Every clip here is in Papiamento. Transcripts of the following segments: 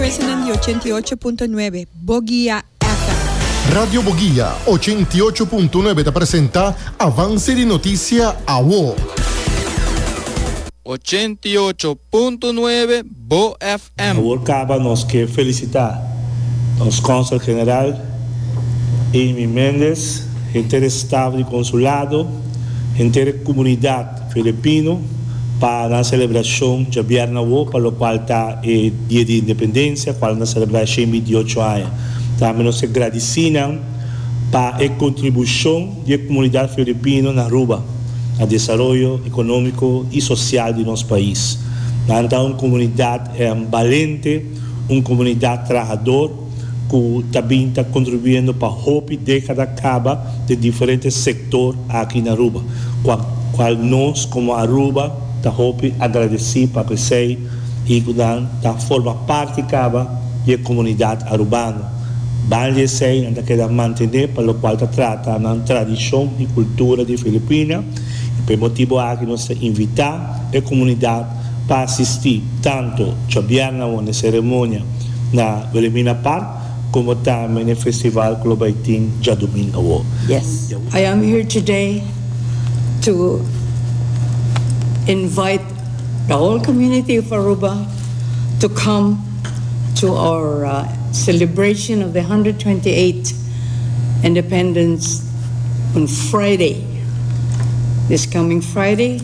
President di ochenta i ocho punto nuebe, Boguia FM. Radio Boguia ochenta i ocho punto nuebe ta presenta Avance di Noticia Awo. Ochenta i ocho punto nuebe, Bo FM. Awor caba nos ke felicita nos Consel General Amy Mendez, henter e staff di Consulado, henter e comunidad Filipino pa nan selebrashon djabièrnè awó pa lokual ta e Dia di Independensia kual nan ta selebrá e shen binti ocho aña. Tambe nos ke gradisí nan pa e kontribushon di e komunidat filipino na Aruba, na desaroyo ekonómiko i sosial di nos pais. Nan ta un komunidat balente, un komunidat trahador. cu ta bin ta contribuyendo pa hopi decada caba den diferente sector aki na Aruba, cua cual nos como Aruba ta hopi agradeci pa pesey y cu nan ta forma parti caba di e comunidad Arubano. Ban di esey nan ta keda mantene pa locual ta trata nan tradicion y cultura di Filipina y pa e motibo aki nos ta invita e comunidad pa asistí tantu djobièrna won e seremonia na Wilhelmina Park komo tambe n'e festival ku lo bai tin djadumingu awo. I am here today to invite the whole community of Aruba to come to our celebration of the hundred twenty eight independence on Friday, this coming Friday.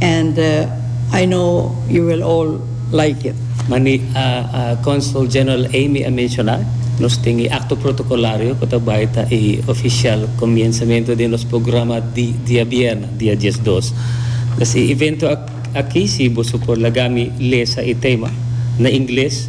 and I know you will all like it. Mani Consul General Amy a menciona, nos tin e acto protocolario cu ta bay ta e oficial comienzamento den nos programa di diabierna, dia diesdos. Pues e evento aki si boso por laga mi lesa e tema na ingles.